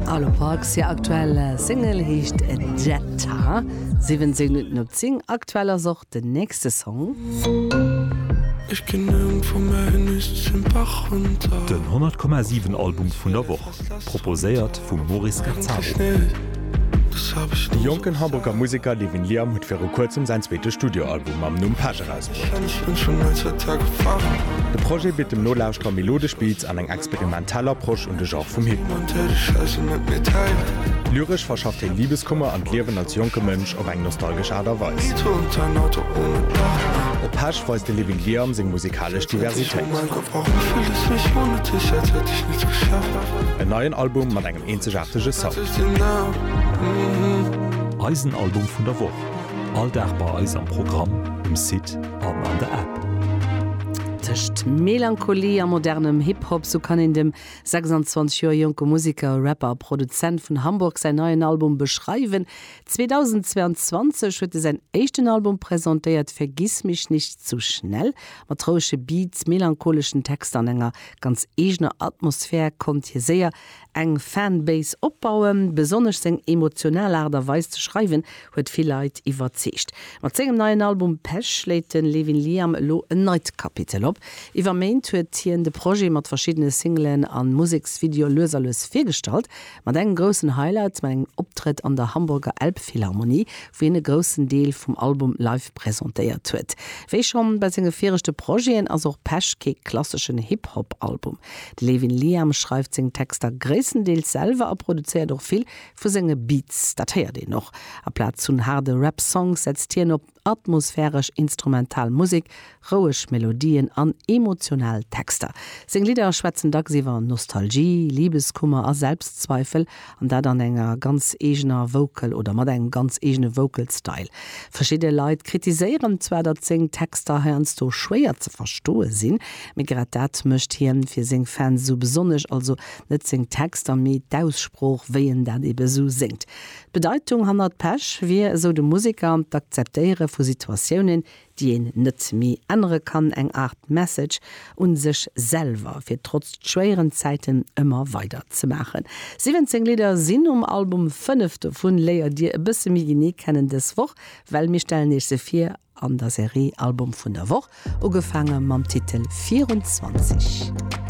Arlo Parks hir aktuell Single heescht Jetta, 17 Minutten op 10. Aktuell ass och den nächste Song. Den 100 Komma 7 Album vun der Woch, proposéiert vum Maurice Gazzaro. De jonken Hamburger Museker Levin Liam huet viru kuerzem säin zweete Studioalbum mam Numm Passion erausbruecht. De Projet bitt dem Nolauschterer melodesch Beats an eng experimentell Approche un de Genre vum Hip-Hop. Lyresch verschafft hien Libeskummer an d'Liewen als jonke Mënsch op eng nostalgesch Aart a Weis. Op Pesch weist de Living Liam seng musikalesch Diversitéit. En neien Album mat engem eenzegaartege Sound. Eisen Album vun der Woch. All Dag bei eis am Programm, um Site an an der App. Tëscht Melancholie a modernem Hip-Hop, sou kann een dem 26 Joer jonke Museker, Rapper a Produzent vun Hamburg säin neien Album beschreiwen. 2022 huet e säin éischten Album presentéiert, Vergiss mich nicht zu schnell. Mat rouege Beats, melancholeschen Texter an enger ganz eegener Atmosphär konnt hie séier Eng Fanbase opbauen, besonnesch seng emotional Aart a Weis ze schreiwen huet vill Leit iwwerzeegt. Mat sengem neien Album Pech schléit de Levin Liam elo en neit Kapitel op. Iwwer Méint huet hien de Projet mat verschiddene Singlen a Museksvideoe lues a lues virgestallt, mat engem groussen Highlight, mat engem Optrëtt an der Hamburger Elbphilharmonie, wou hien e groussen Deel vum Album live presentéiert huet. Wéi schonn bei senge viregte Projeten ass och Pech kee klasseschen Hip-Hop-Album. De Levin Liam schreift seng Texter gréisstendeels selwer a produzéiert och vill vu senge Beats. Dat héiert een och. Aplaz vun haarde Rap-Songs setzt hien op atmosphäresch instrumental Musek, roueg Melodien an emotional Texter. Seng Lidder schwätzen dacks iwwer Nostalgie, Libeskummer a Selbstzweifel An dat an enger ganz eegener Vocal oder mat engem ganz eegene Vocal Style. Verschidde Leit kritiséieren zwar, datt seng Texter heiansdo schwéier ze verstoe sinn, mee grad dat mécht hien fir seng Fans esou besonnesch, also net seng Texter, mee d'Aussprooch, wéi en dat ebe esou séngt. D'Bedeitung hannert Pech wier, esou de Museker, d'Akzeptéiere vu Situatiounen, déi een net méi ännere kann, eng Aart Message un sech selwer, fir trotz schwéieren Zäiten ëmmer weider ze maachen. 17 Lidder sinn um Album, fënnef dovun léiert dir e bësse méi genee kennen dës Woch, well mir stellen iech se vir an der Serie Album vun der Woch, ugefaange mam Titel 24.